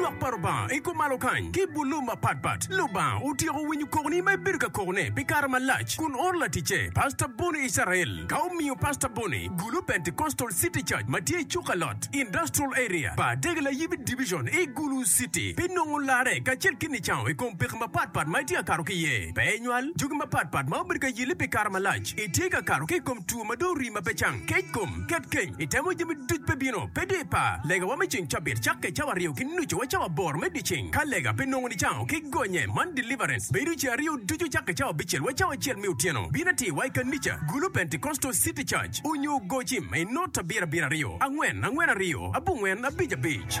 Lwak pa Lubanga i kom malo kany ki bulu mapatpat. Lubanga otyeko winyo kokoni ma ibedo ka kokone pi kare malac kun oro laticce, Pastor Bonnie Israel, ka omiyo Pastor Bonnie Gulu Pentecostal City Church ma tye i Cukalot Industrial Area, pa Dege Layibi Division i Gulu City. Pi nongo larre kacel ki nicango i kom pekki mapatpat ma itye ka kato ki iye, pe inywal jogi mapatpat ma obedo ka yelli pi kare malac, itye ka kato ki i kom two ma dong rii ma pe cang, kec kom, Ket kec, itemo jami duc pe bino, pe dye par. Legawa me ceng cabit cakke cawa aryo ki nucu wa cawa aboro me dyeceng. Ka lega pe nongo nicango ki gonye man deliverance bedo ce aryo ducu cakke cawa abicel wa cawa acel me otyeno. Bin atir wa i kanica gulu Pentecostal city church onyo gocim i not abiro abiro aryo angwen angwen aryo abongwen abic abic.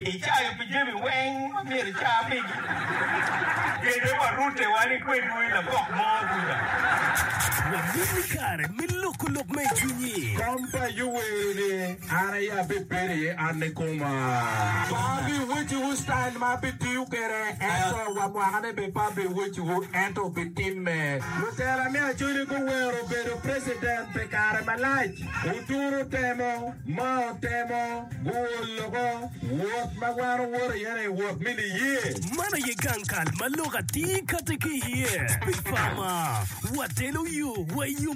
Icayo pi jami weng ma myero ica pigi? Kete wa rute wan i kwedwu i labok mo kuca. Wabin ni kare me loko lok ma i cwinyi. Kom pa Ayub wero ni, An aye abibedo iye, an ni koma. Pe abiwecciwu citail ma abitiyo kwede, ento wa mwakane bene pe abiwecciwu, ento bitimme. Lutela me Acholi guwero bedo precedent pi kare malac. Oturo temo. ma otemo guwo loko wot ma wan owoto iye ni wot me liye. Man aye gang kal ma lok atir kati ki iye. Pi pama, watelo yo wa i yo